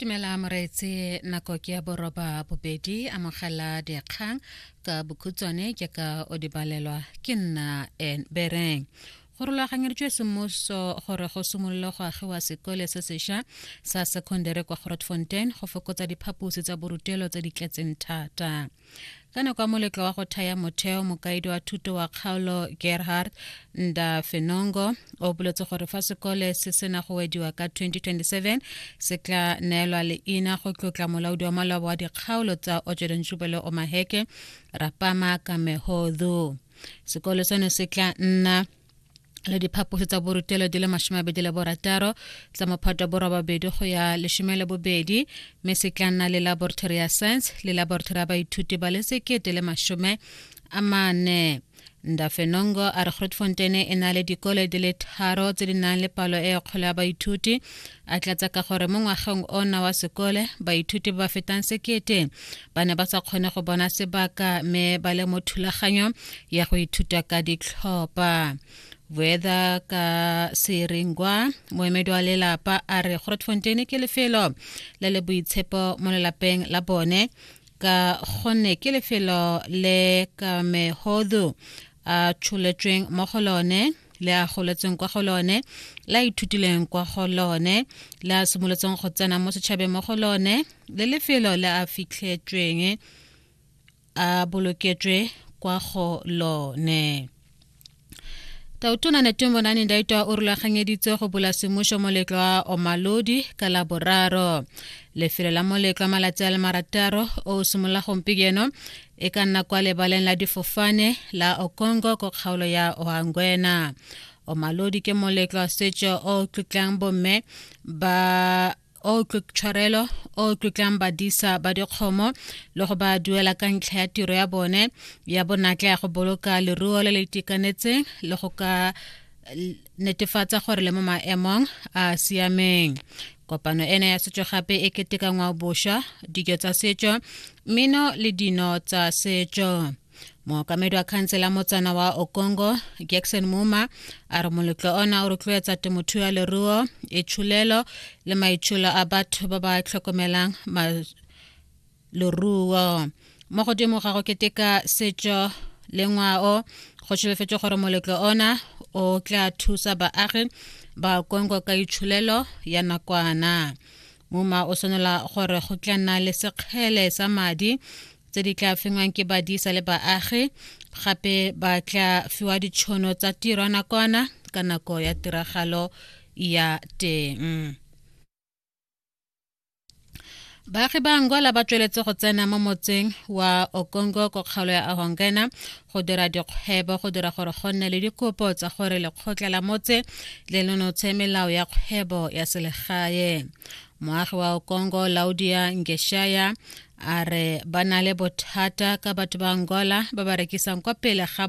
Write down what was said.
dumela moreetse nako ke ya boroba bobedi amogela dikgang ka bokhutswane ke ka o di balelwa ke nna en bereng go rulaganyeditswe semmuso gore go simolole go agiwa sekole se sešwa sa secondary kwa grotfontein go fokotsa diphaposi tsa borutelo tse di tletseng thata ka nako ya moletlo wa go thaya motheo mokaedi wa thuto wa kgaolo gerhard nda fenongo o boletse gore fa sekole se sena go wediwa ka 2027 se tla neelwa leina go tlotla molaodi wa malwabo wa dikgaolo tsa ojedon jubele omaheke rapama kamehodhu sekole seno se tla nna le diphaposi tsa borutelo di le masomabedi le borataro tsa mophato wa borobabedi go ya lesome le bobedi mme se tla nna le laboratory ya science le laboratory ya baithuti ba le sekete le masome a mane ndafenongo a re grootfonteine e na le dikole di le tharo tse di nang le palo e kgolo ya baithuti a tlatsa ka gore mo ngwageng ona wa sekole baithuti ba ba fetang sekete ba ne ba sa kgone go bona sebaka mme ba le mo thulaganyo ya go ithuta ka ditlhopha weather ka seringwa moemedi wa lelapa a re grotfonteine ke lefelo le le boitshepo mo lelapeng la bone ka gonne ke lefelo le kamehodu a tsholetsweng mo go lone le a goletsweng kwa go lone le a ithutileng kwa go lone le a simolotseng go tsena mo setšhabeng mo go lone le lefelo le a fitlhetsweng a boloketswe kwa go lone tautona netumonane ndaitwa o rulaganyeditse go bula semmušo moletlo wa omalodi ka la boraro lefelo la moletlo wa malatsi a le marataro o simolola gompieno e ka nna kwa lebaleng la difofane la okongo ko kgaolo ya oangwena omalodi ke moletlo wa setso o tlotlang bomme ba o tshwarelo o tlotlang badisa ba dikgomo le go ba duela ka ntlha ya tiro ya bone ya bonatla ya go boloka leruo le le itekanetseng le go ka netefatsa gore le mo maemong a siameng kopano ena ya setso gape e keteka ngwaobosha dijo tsa setso mmino le dino tsa setso mookamedi wa khansela motsana wa okongo jackson muma a re moletlo ona o rotloetsa temothuo ya leruo e tshulelo le maitsholo a batho ba ba tlhokomelang leruo mo godimo ga go keteka setso le ngwao go šebefetše gore moletlo ona o tla thusa baagi ba kongo ka itšholelo ya nakwana muma o swanela gore go tla nna le sekgele sa madi tse di tla fengwang ke badisa le baagi gape ba tla fiwa ditšhono tsa tiro nakwana ka nako ya tiragalo ya teng baagi ba angola ba tsweletse go tsena mo motseng wa okongo ko kgaolo ya ahongena go dira dikgwebo go dira gore go nne le dikopo tsa gore lekgotla la motse le nonotshe melao ya kgwebo ya selegae moagi wa okongo laudia ngeshaya a re ba na le bothata ka batho ba angola ba ba rekisang kwa pele ga